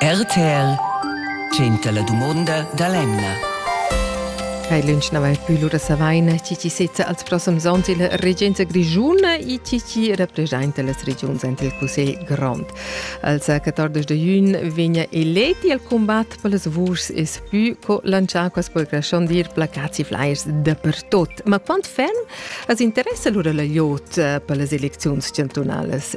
RTL tschenta la dumonda da l'emna. Hai lunch na vai plü lura savaina chi chi sezza als prossums ons il regenza grigiuna e chi chi representa las regiuns ant il Cussegl grond. Als 14 de jun vegna eleti al combat per las vuschs e spü co lanciar quas per grashon dir placats e flyers dapertot. Ma quant ferm as interessa lura la iot per las elecziuns chantunalas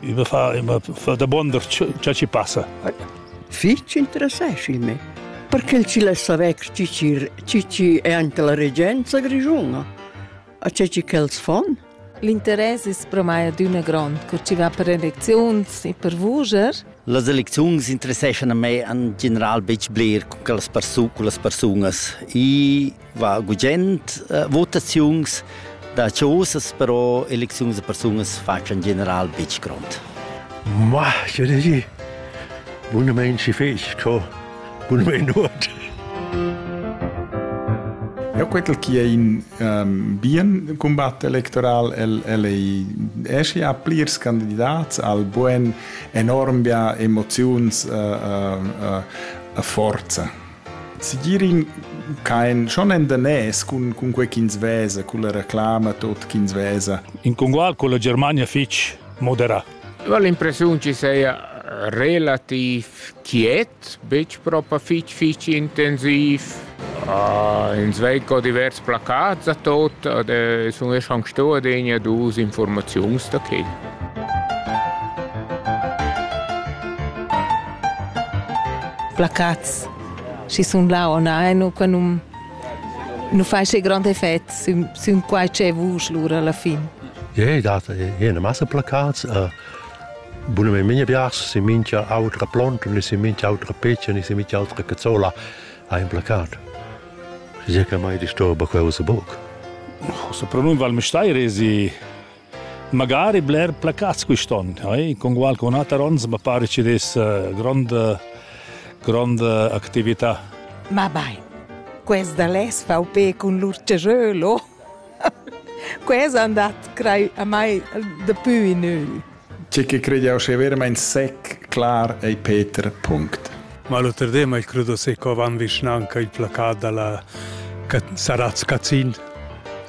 I me fa, i me fa damonda cha ci passa. Fich interessesci me. Perché ci lessa vec cicir cici è ante la regenza grigiuna? A c'è ci quels fon? L'interess es pro mai adüna grond, cur ci va per elecziuns e per vuger. Las elecziuns interesseschan a me en general betg bler con las persun- con las persunas. I va gugent uh, votaziuns da chosas, però elecziuns da persunas faccian general betg grond. Ma, je ne Bunne Menschen fest, ko bunne Not. Ja, quel chi è in um, bien combat electoral, el, el ei esci a plirs candidats al buen enorm bia emoziuns uh, uh, uh, forza. Sigir in kein schon en danès cun cun quei ch'ins vesa, culla reclama tot ch'ins vesa. In congual con la Germania fitg moderà. Eu ho l'impressiun chi seia relativ quiet, betg propa fitg fitg intensiv. Uh, ins vei co divers placats a tot, ad e sun esch anc sto adegna dus informaziuns da quel. Placats. Schi sun là on ein u qua nu nu fai che grand effect sün, sün quai che vusch lura alla fin. Ja, yeah, dat jene masse placats. Uh, bune me minha bias si mincha autra plont, ni si mincha autra peccia, ni si mincha autra cazzola ha un placat. Je che mai disturba quella se buc. Se pronun val me stai resi Magari bler placats quist'on, eh? congual con ater ons ma pare ci des eh, gronda gronda actività. Ma bai. Questa les VP con l'urcejolo. Questa è andat crei a mai de più in ü. C'è che crede che veramente sec clar ei Peter punct. Ma lo terdema il credo se co van vicinanca il placat dalla Saraz Cazin.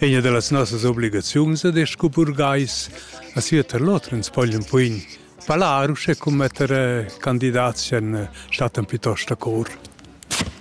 Egna dallas nossas obligaziuns ed es scu burgais a sieter lot ins pogl ün puin palar uschè cum metter candidats in staten piuttost da cor.